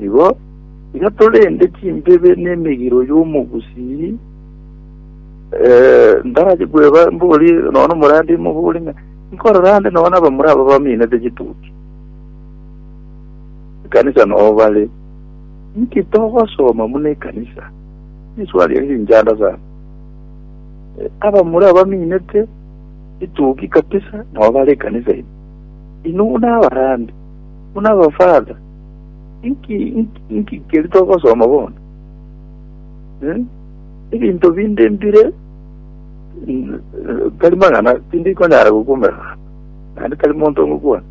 Igo iga torende chimbebe n'emegiro y'omogusii, eh, ndache kweba mbori nono omorande imo bori ng'a nkorora ande nono abamura aba baminete chituki ekanisa nobo bare nki togosoma muna ekanisa iswali eri rinchanda sana Eh, abamura abaminete chituki kabisa nobo bare ekanisa ino ino buna abarande Buna abafaratha, inki, inki, inki keri togosoma bono? Eh? Ebinto binde mbire mm, tari mang'ana tindi konyara gokumera naende tari monto ngokwana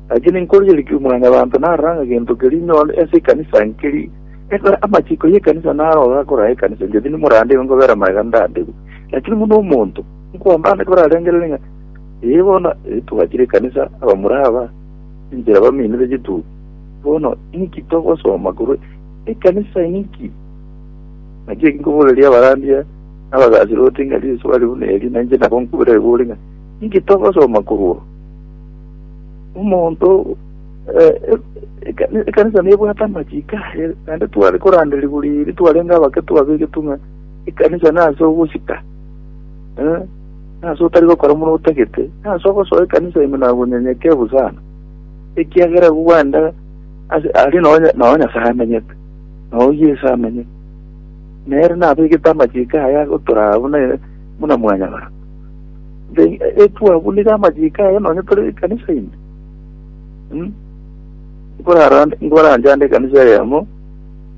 lakini nkorieriki omwana banto naranga gento keri nyone ase ekanisa nkeri ekora amachiko y'ekanisa naroga akora ekanisa ngeti nimorandegwe nkobera maega ndandegwe lakini muno omonto nkwambande korarengerere ng'a ee bono eh, twachire ekanisa abamura aba Inchera bamenire chitugo. Bono inki togosoma korwa ekanisa inki? Naki eki nkoboreria abarandia n'abagaasiroti ng'a risuba riu neri, na inche nabo nkobera ebori ng'a inki togosoma korwa omonto ekanisa nebwate amachiko aye, naende tware koranderigwa riiri twarenge abake twabegetwe ng'a ekanisa nase ogosika. Eh, nase otari gokora buna otagete, nase ogosoa ekanisa ime na obonyenyeke obo sana, ekiagera igo gwenda ase aria nao Nya- nao Nyasae amenyete, nao Yeso amenyete. Nere nabegete amachiko aye agotoraa buna buna mwanyabanto. Then, eh, eh, twabuniga amachiko aye nonye tore ekanisa ime. Mm. Nkorara- nkoranchande ekanisa eyemo,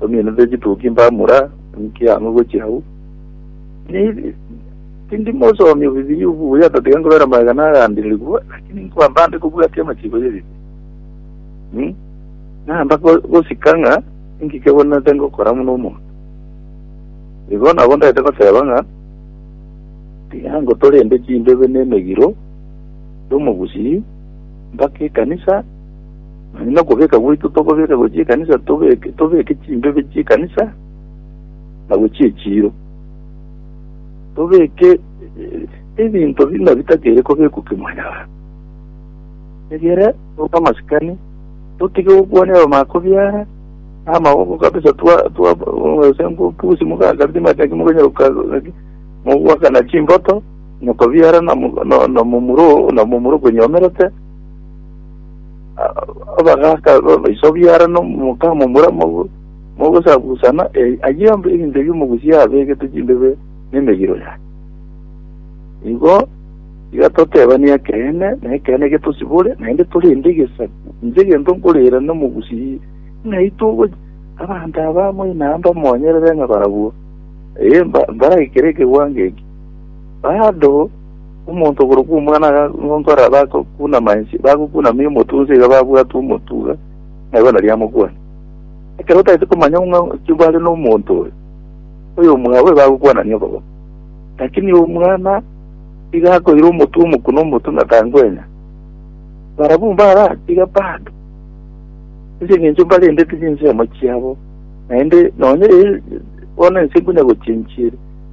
Tominete chituki mbamura, inki ang'e gochia agwo? Ni- Tindi mosomi o Bibilia obo buya, tatiga nkobera magega nagandirigwe, lakini nkwamba nde kobwatia amachiiko ye Bibilia. Mm. Namba go- gosika ng'a inki kebonete ngokora buna omonto. Igo nabo ndaete goteba ng'a tiga ngotorende chimbebe na emegiro y'omogusii mpaka ekanisa Onye nokobeka gwaito tokobeka gochia ekanisa, tobeke tobeke chimbibe chi'ekanisa na gochia echiiro. Tobeke eh, ebinto buna bitakere kobekwa kimwanyabanto. Egere obe amasikani, totige gokwania abamako biara, amaboko kabisa twa twa ase ngopusi mugakabisa mataki muganyara gukaki mugwakana chimboto noko biara na mu- na- na momuro na momuro konyomerete abagaka baiso biara nomokamo mura mogosabusana ayio ebinto ebio mogusia abegete chimbebe nemegiro yaye igo igatotebania ekeene na ekeene getosibore naende torende egesaku inche egento nkorera nomogusii ng'ai togo abanto aba moina mbamonyerere ng'a barabwo ee mbaraikere ekegwango eki bado Omonto okorokwa omwana agagonkora abagokunama inse, bagokunamia omotunsi iga babwate omotuga, na igoro naria amokwane. Ekero otaete komanya ng'a chibo are nomonto oyo, oyo omwabe bagokwanania obobe. Lakini omwana iga akoira omotwe omoku na omotwe ng'a tangwenya, barabwo mbaratiga bado, ase eng'encho mbarendeti chinsemo chiabo, naende nonye bono ense konya gochenchire.